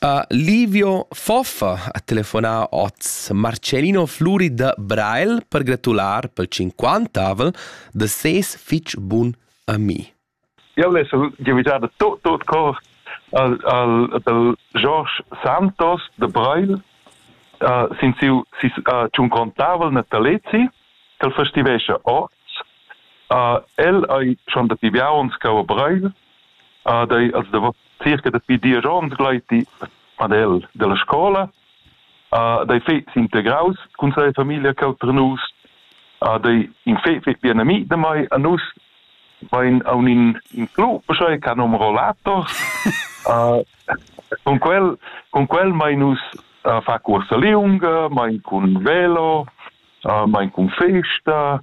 A Livio Foffa ha telefonà oz Marcellino Fluri da Brail per gratular pel cinquantavel da ses fich bun ami. Eu l'he giavüdada tot tot cor al, al dal George Santos de Brail uh, sin siu si, uh, cinquantavel natalezi ch'el festivescha oz. Uh, el ei schon da tiviauns cau a Brail Ah, dai, els davò circa dapi diesch ons gleiti ad el dalla scola. Ah, dai fe s'integraus cun sia famiglia cheu per nus. Ah, dai in fe fe bien ami da mai a nus vain a un in, in club, schai che nom rollators. uh, con quel, con quel mai nus uh, fa corsa liunga, mai cun velo, uh, mai cun festa,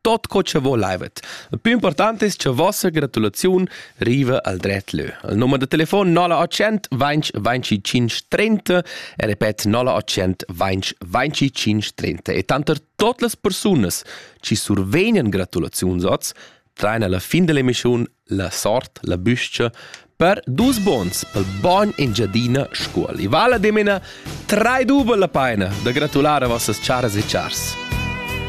tot co che volaivet. Il più importante es che vossa gratulaziun riva al dret lö. Il nummer de telefon 0800 20 25 30 e repet 0800 20 25 30 e tanter tot las persunas ci survegnan gratulaziunsots traina la fin dell'emissione la sort, la büscia per dus bons pel bogn Engiadina Scuol. I vala dimena trai duba la paina da gratulare a vossas charas e chars.